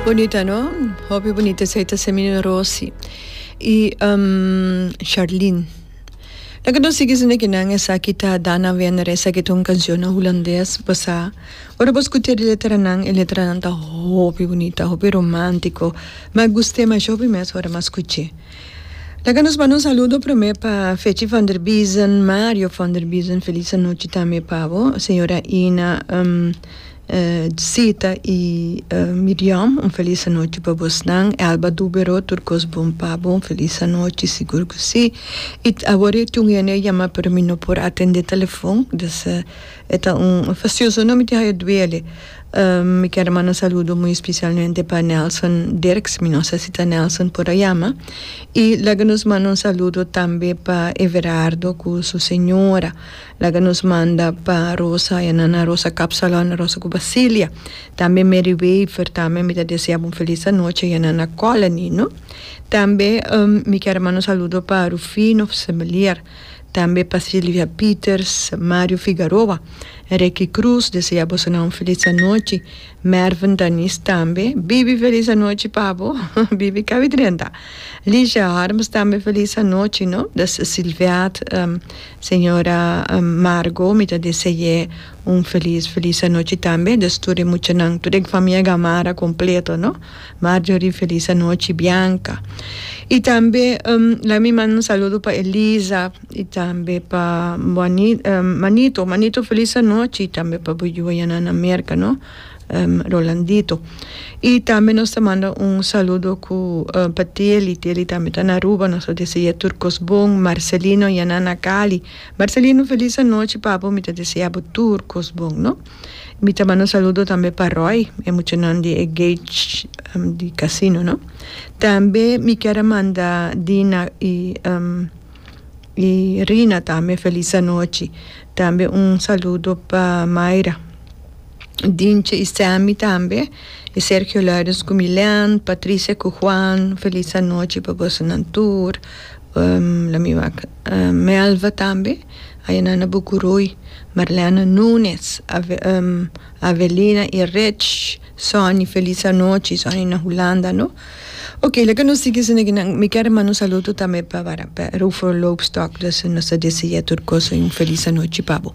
Bonita no? Hopi bonita esei ta Semina Rosi y um, Sharlene. Nan que no sigui sin de que nan esaki ta Dana Wenner, esaki ta un cancion na Hulandes basá. Ora bo scutia e letranan, e letranan ta hopi bonita, hopi romantico. M'a gust'e masha hopi mes ora m'a scuch'e. Laga nos manda un saludo prome pa Fetchie van der Biesen, Mario van der Biesen, feliz anochi tambe pa bo, señora Ina, um. Zita y Miriam un feliz anochi pa bos nan Elba Dubero tur cos bon pa bo un feliz anochi sigur cu si y awor e tin un hende a yama pero mi no por atende telefon dus e ta un facioso no mi tin hayo duele mi ker a manda saludo muy especialmente pa Nelson Dirks mi no sa si ta Nelson por a yama y laga nos manda un saludo tambe pa Everardo cu su señora. Laga nos manda pa Rosa ya nan a Rosa Capsalon, Rosa cu Basilia, tambe Mary Wever, tambe mi ta desea bo un feliz anochi ya nan a Colony no. Tambe mi kier manda un saludo pa Rufino Semelier, tambe pa Silvia Peters, Mario Figaroa, Ricky Cruz desea boso nan un feliz anochi, Mervin Danis tambe, Bibi feliz anochi pa bo, Bibi cabi drenta, Ligia Harms tambe feliz anochi no, Silveat. Señora Margo mi ta dese'é un felis felis anochi tambe des tur e muchanan tur e famia Gamarra completo no Marjorie felis anochi Bianca y tambe laga mi manda un saludo pa Eliza y tambe pa Manito Manito felis anochi y tambe pa bo yu ayanana Merca no. Rolandito. Y tambe nos ta manda un saludo cu pa Teli, Teli tambe ta na Aruba, nos ta dese'é tur cos bon, Marcelino y Anana Cali. Marcelino feliz anochi papu, mi ta deseabo tur cos bon no. Mi ta manda un saludo tambe pa Roy, e muchanan di e Gage di casino no. Tambe mi kier a manda Dina y y Rina tambe feliz anochi tambe un saludo pa Myra Dinche y Sammy tambe y Sergio Lourens cu Milen Patricia cu Juan feliz anochi pa bosonan tur lo mi wak Melva tambe ayanan na Bucuruy Marlena Nunes Avelina y Rich Sonny feliz anochi Sonny na Hulanda no. Ok laga nos sigui su neginan mi kier manda un saludo tambe pa Rufo Loopstok nos ta desea tur cosa y un feliz anochi pa bo.